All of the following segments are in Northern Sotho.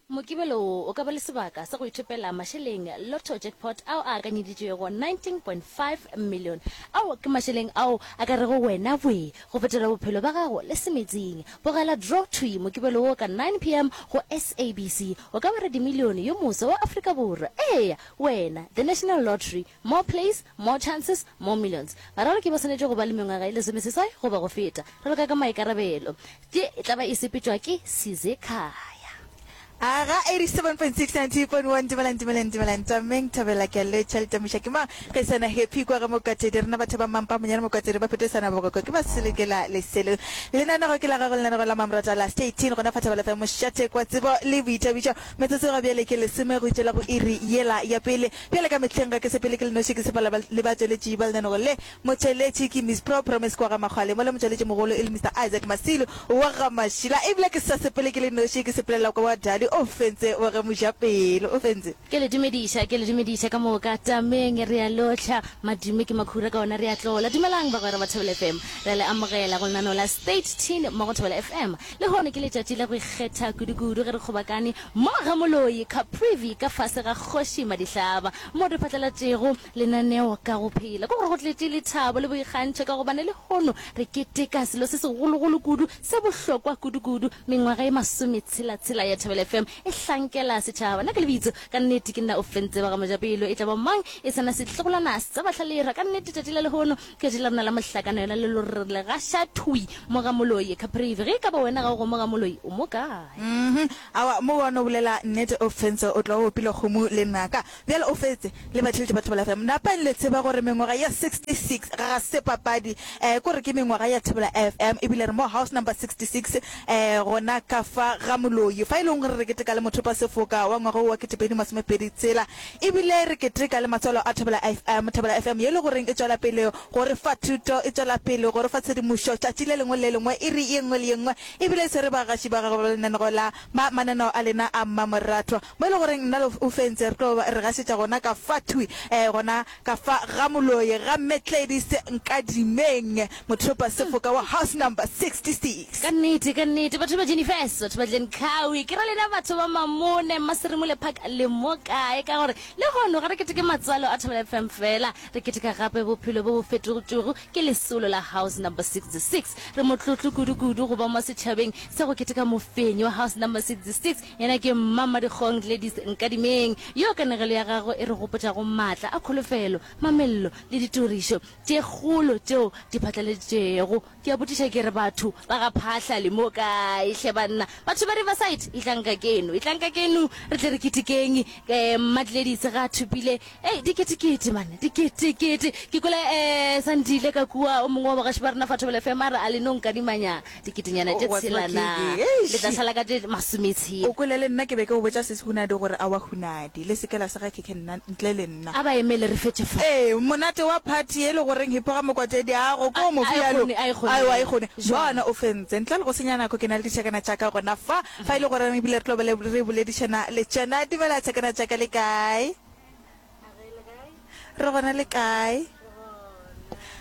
Mokibelo wo o ka ba le sebaka sa go ithopela mašeleng Lotto Jackpot ao a akanyeditšwego 19.5 million. Ao ke mašeleng ao a ka rego wena bwee go fetola bophelo ba gago le semetsing. Bogela draw thwi Mokibelo wo ka 9 pm go SABC. O ka ba radimilione yo moswa wa Afrika Borwa. Eya! Wena, The National Lottery. More plays, more chances, more millions. Bararo ke ba swanetše go ba le mengwaga e lesomeseswai goba go feta. Re loka ka maikarabelo. Tše e tla ba e sepetšwa ke Size Khaya. Aga 87.690.1 Dumelang dumelang dumelang Tšameng Thabela ke a le tšhelete Muša ke mang ge sena happy kwa ga Mokatsedi rena batho ba mampa monyane Mokatsedi ba phete sana bogoko ke ba sele ke la leselo Lenanego ke la gago lenanego la mamrata la stay teen gona fa Thabela FM Mošate kwa tsebo le boithabišo metsotso ga bjale ke lesome go itšela go iri yela ya pele Bjale ka mehleng ga ke sepele ke le noši, ke sepela le batšweletši ba lenanego le. Motšweletši ke Miss Pro Promise kwa ga Makgwale, mola motšweletši mogolo e le Mister Isaac Masilu wa ga Mašila. Ebile ke sa sepele ke le noši, ke sepelela kwa wa Dali o fentse wa ge Mojapelo. O fentse. Ke le dumediša, ke le dumediša ka moka. Tameng re a lohla. Madimo ke makhura ka ona re a tlola. Dumelang bagwera ba Thobela FM. Re a le amogela go lenaneo la State Teen mo go Thobela FM. Lehono ke letšatši la go ikgetha kudukudu ge re kgobakane, Mo ga Moloi Caprivi ka fase ga Kgoši Madihlaba mo re phatlalatšego lenaneo ka go phela. Ke gore go tletše lethabo le boikgantšho ka gobane lehono re keteka selo se segologolo kudu se bohlokwa kudukudu. Mengwaga e masometshela-tshela ya Thobela FM e hlankela setšhaba. Nna ke lebitso ka nnete ke nna Ofentse Bagamojapelo. E tla ba mang e se na sehlogolwana sa Batlhalerha. Ka nnete tšatši la lehono Letšatši la rena la mohlakana yona le lo rrile ga ša thwi mo ga Moloi, Caprivi. Ge e ka ba wena ga o go mo ga Moloi, o mo kae? Mmhmm. Awa, mo wa no bolela nnete o fentse, o tla o opile kgomo le naka. Bjale o fetse, le batheletše ba Thebola FM. Napeng le tseba gore mengwaga ya 66 ga se papadi. Eh, ko re ke mengwaga ya Thebola FM, ebile re mo house number 66, eh, gona ka fa ga Moloi. Fa e leng gore re keteka le mothopasefoka wa ngwaga wo wa 2026, E bile re keteka le matswalo a Thobela FM, Thobela FM ye e le goreng e tšwela pele go re fa thuto, e tšwela pele go re fa tshedimošo tšatši le lengwe le le lengwe, iri ye nngwe le ye nngwe. E bile e swere bagaši ba gagwe ba lenaneo la ma, mananeo a lena a mmamoratwa, mo e le goreng nna le Ufentse re tlo re gašetša gona ka fa thwi, ee, gona Ka fa ga moloi ga Mme Gladys Nkadimeng, mothopasefoka wa house number 66. Ka nnete, ka nnete, batho ba Jennifer's, batho ba Glencowey, ke ra lena batho ba Mamone, Mmaserimole Park, le mo kae? Ka gore lehono ga re keteke matswalo a Thobela FM fela, re keteka gape bophelo bo bo fetogtwego ke lesolo la house number 66. Re motlotlo kudu-kudu go ba mo setšhabeng sa go keteka mofenyi wa house number 66, Yena ke Mma Mmadikgong Gladys Nkadimeng, yo kanegelo ya gagwe e re gopotšago maatla a kholofelo, mamello le ditorišo tše kgolo tšeo di phatlaladitšwego. Ke a botšiša ke re, Batho ba ga Phahla le mo kae hle banna? Batho ba Riverside, etlang ka keno, etlang ka keno re tle re ketekeng! Mma Gladys ga a thopile Hei, diketekete, man, diketekete. Ke kwele e Sandile ka kua, o mongwe wa bagaši ba rena fa Thobela FM, a re, A le no nkadimanya diketenyana tše tshela na? Le tla sala ka tše masometshela. O kwele, le nna ke be ke go botša Sesi Hunadi gore a wa Hunadi, le se ke la sega khekhe nna, ntle le nna. A ba emele re fetše fa. Ee, monate wa party ye le go reng hipho ga mokwatedi a go ko mo bjalo. A e kgone, a e kgone. Bona o fentse. Ntle le go senya nako ke na le ditšhakana tša ka gona fa, fa e le go reng ebile re tlo ba le re boledišana le tšona. Dumela tšhakana tša ka, le kae? Re gona le kae?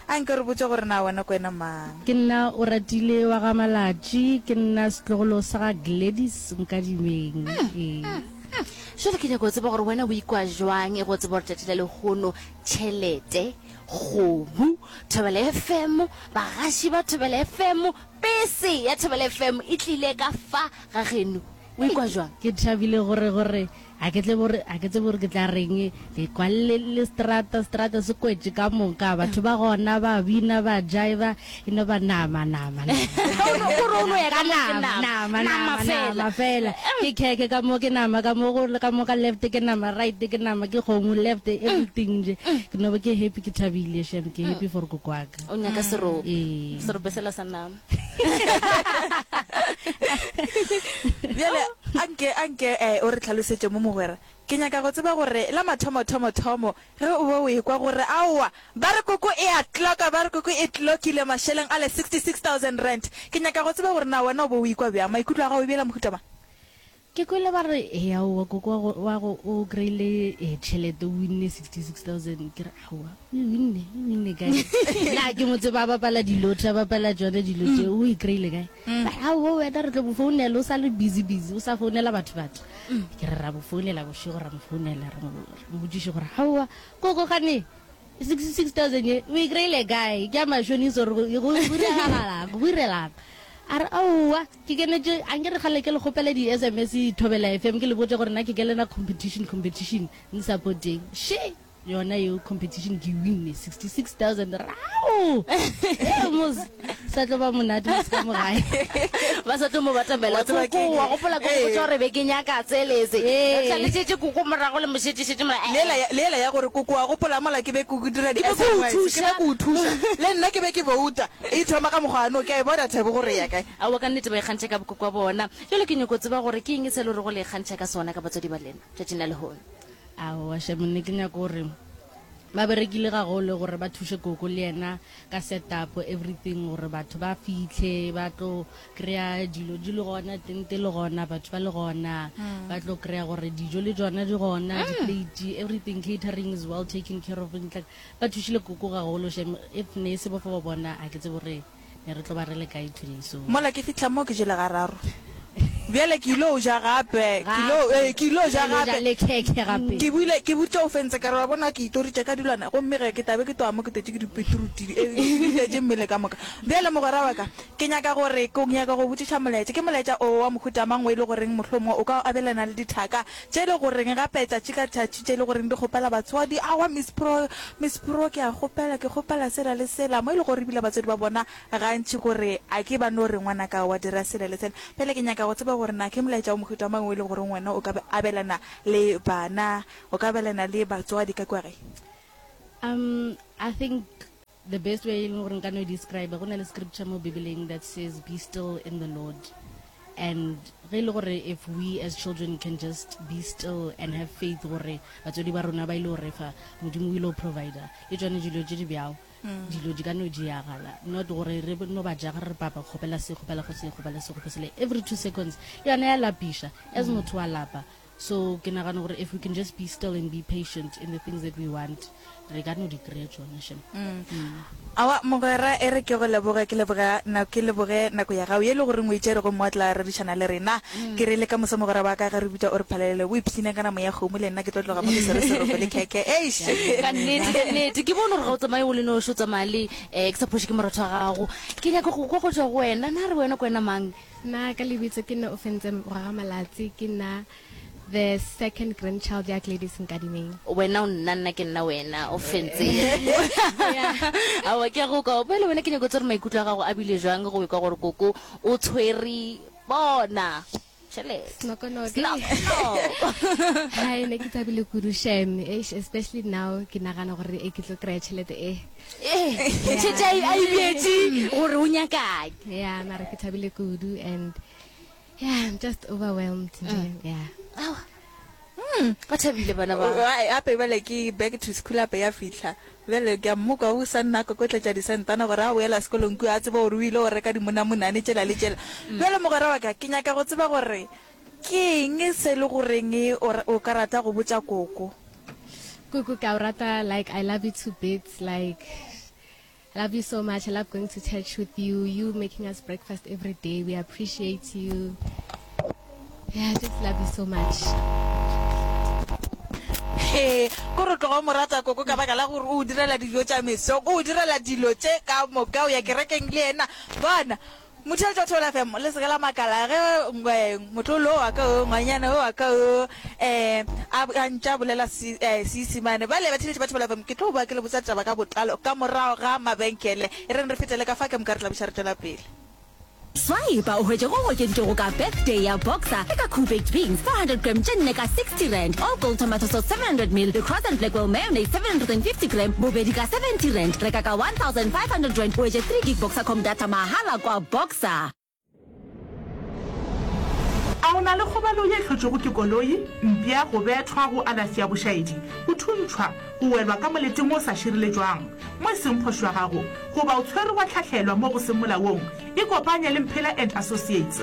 A nke re botše gore na wena ke wena mang. Ke nna Oratile wa ga Malatši. Ke nna setlogolo sa ga Gladys Nkadimeng. Jwale ke nyaka go tseba gore wena o ikwa jwang e go tseba gore tšatši la lehono tšhelete, kgomo, Thobela FM, bagaši ba Thobela FM, pese ya Thobela FM e tlile ka fa ga geno. O ikwa jwang? Ke thabile gore, gore, ga ke tsebe gore, ga ke tsebe gore ke tla reng, ke kwa le, le seterata, seterata se kwetše ka moka, batho ba gona ba bina, ba jaiva, e no ba nama, nama, nama, O no- o re o no ya ka ka mo ke nama, nama, nama, nama nama, fela. nama fela, ke khekhe ka mo, ke nama ka mo, go le ka mo ka left, ke nama right, ke nama, ke kgomo left, everything nje, ke no ba ke happy, ke thabile, shem, ke happy for koko wa ka. O nyaka serope, Ee. serope sela sa nama. bjale a nke a nke um o re tlhalosetse mo mogwera ke nyaka go tseba gore la mathomothomo-thomo ge o be o ekwa gore aowa ba re koko e a tloka ba re koko e tlokile mašeleng a le sixty six thousand rand ke nyaka go tseba gore na wena o be o ikwa bjang maikutlo a gago e bjela mohutamang Ke kwele ba re he aowa koko wa go o kry-ile tšhelete o winne 66000 ke re aowa o e winne o e winne kae na ke mo tseba a bapala dilotho a bapala tsone dilo tse o e kry-ile kae ba re aowa wena re tlo mo founela o sa le busy busy o sa founela batho batho ke re ra mo founela bošego ra mo founela re mo botšiše gore aowa koko gane 66000 ye o e kry-ile kae ke a mashonisa gore go diragalang go direlaka a re aowa Ke kenetše, a nke re kgale ke le kgopele di sms Thobela FM ke le botše gore na ke kenela competition, competition, nsapoteng. She! Yona yeo competition ke e winne, 66,000 Rau! Mos. Sa tlo ba monate mos ka mo gae. Ba sa tlo mo batamela. Koko, wa gopola ke go botša gore be ke nyaka tsele se? Re tlalesetše Koko morago le mo šetše-šetše mola. Ee. Lela, le yela ya gore, Koko, wa gopola mola ke be ke go dira di sms, ke be ke go thuša, le nna ke be ke bouta. E thoma ka mokgwa ano, ke a e bona thabo gore e ya kae. Aowa, ka nnete ba ikgantšha ka bokokwa bona. Bjale ke nyoko tseba gore ke eng se e lego go le ikgantšha ka sona ka batswadi ba lena tšatšing la lehono. Aowa, Shem, ne ke nyaka gore ba berekile gagolo gore ba thuše koko le yena ka setup everything gore batho ba fihle ba tlo kry-a dilo di le gona, tente e le gona, batho ba le gona, ba tlo kry-a gore dijo le tšona di gona, di-plate, everything, catering is well taken care of. Ba thušile Koko gagolo shem if ne e se bofo ba bona ga ke tsebe gore ne re tlo ba re le kae today so. Mola ke fihla mo ke jele gararo bjale ke ylo ja gape ke ylo ee ke ylo ja gape le khekhe gape ke bile ke butše o fentse ka re wa bona ke itoritše ka dilwana gomme ge ke tabe ke tloga mo ke totše ke dipetruti e bitletše mmele ka moka bjale mogwera wa ka ke nyaka gore ke nyaka go botšiša molaetša ke molaetša o wa mohuta mang o e le goreng mohlomongwe o ka abelana le dithaka Tše le goreng gape tšatši ka tšatši tše le goreng di kgopela batswadi, Aowa Miss Pro, Miss Pro, ke a kgopela, ke kgopela sela le sela, mo e lego gore ebile batswadi ba bona gantši gore a ke ba no re ngwanaka wa dira sela le sela. Bjale ke nyaka go tseba gore na ke molaetša wa mohuta mang o e lego goreng wena o ka abelana le bana, o ka abelana le batswadi ka kua gae? Um, I think The best way e leng gore nka no e describe go na le scripture mo bibeleng that says be still in the lord and ge e le gore if we as children can just be still and have faith gore batswadi ba rona ba ile go refa modimo o ile go provider e tswane dilo tse di bjao mm. dilo di ka no diagala not gore re no ba jaga re papa kgopela se kgopela go se kgopela se kgopesele every two seconds yone ya lapiša as mm. motho wa lapa So ke nagana gore if we can just be still and be patient in the things that we want, re ka no di kry-a tšone shem. Aowa mogwera, e re ke go leboge, ke leboga nako, ke leboge nako ya gago ye e le goreng o e tšere gomme wa tla rerišana le rena. Ke re le ka moso mogwera wa ka ge re bitša o re phalelele o ipshineng ka namo ya kgomo le nna ke tlo tloga mo ke swere seroko le khekhe. Eish! Ka nnete, ka nnete. Ke bone gore ga o tsamaye o le noši, o tsamaya le um ke sa phoše ke moratho wa gago. Ke nyaka go kwa go tšwa go wena, na re wena ke wena mang? Nna ka lebitso ke nna o fentse morwa ga malatsi ke nna the second grandchild ya Gladys Nkadimeng. Wena o nna nna ke nna wena o fentse. Awa ke ya go kwa pele wena ke nyako tsere maikutlo a gago a bile jwang go kwa gore koko o tshwere bona. Hi ne ke tshabile kudu shem especially now ke nagana gore e ke tlo kry-a tšhelete e. tšhetša a ibietše gore o nyakang ya mara ke thabile kudu and yeah i'm just overwhelmed yeah Hmm, ba thabile bana ba ape bale ke back to school ape ya fitlha bjale ke a mmoka o sa nna ka kotletša disentana gore a boela sekolong kua a tseba gore o ile go reka dimonamonane tšela le tšela bjale mogwera wa ka ke nyaka go tseba gore Ke eng se le goreng o o ka rata go botša koko? Koko ke a o rata like I love you to bits like I love you so much I love going to church with you you making us breakfast everyday we appreciate you yeah I just love you so much. He ko re tloga o mo rata koko ka baka la gore o o direla dijo tša mesong o o direla dilo tše ka moka o ya kerekeng le yena bona Mothelto Theola FM le seka la makala ge motlolo wa ka o ngwanyana wa ka o um a ntša bolela Seisimane. Eh, ba le batheletši ba Theola FM ke tlo ba ke le botsa taba ka botlalo ka morago ga mabenkele. E reng re fetele ka fa ke mokare tlabiša re tšwela pele. Swipe o hwetše go go okeditšego ka birthday ya boxer le ka coubaked beans 400 gram tše nne ka 60 rand all gold tomato sauce 700 mil le cross and blackwell mayonnaise 750 gram bobedi ka 70 rand reka ka 1500 rand o etse 3 gig boxer com data Sa mahala kwa Boxer. A o na le kgobalo ye hlotšwego ke koloi, mpša, go bethwa, go alafi ya bošaedi, go thuntšhwa, go welwa ka molete mo o sa šireletšwang, mo e seng phošo ya gago, goba o tshwerwe wa hlahlelwa mo go seng molaong? Ikopanye le Mphela and Associates.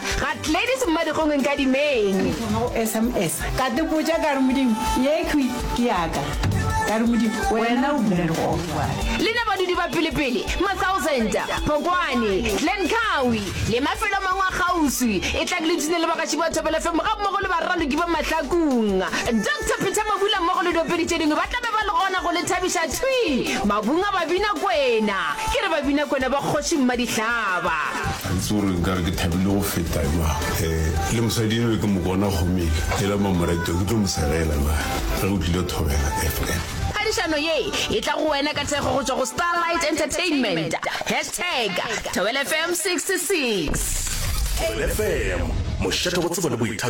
Ga Gladys Mmadikgong Nkadimeng. Ke thoma go sms ka dipotša ka re Modimo ye khwi ke yaka ka re Modimo wena o bule legofa. Le na badudi ba pelepele, Massauzent, Phokwane, Glen Kawi le mafelo a mangwe a kgauswi e tlang le tune le bagaši ba Thobela FM ga mmogo le baraloki ba Mahlakung. Doctor Peter Mabula mmogo le diopedi tše dingwe ba tla be ba le gona go le thabiša thwi mabung a Babinakwena. Ke re Babinakwena ba Kgoši Mmadihlaba. Ga ke tso gore nkare ke thabile go feta jwang. E le mosadi eno ke mo bona gomele e la mamoreto ke tlo mo segela na ge o tlile thobela FM. Phadišano ye e tla go wena ka thekgo go tšwa go Starlight Entertainment. Hashtag Thobela FM 66. Thobela FM, mošate wa tsebo le boithabišo.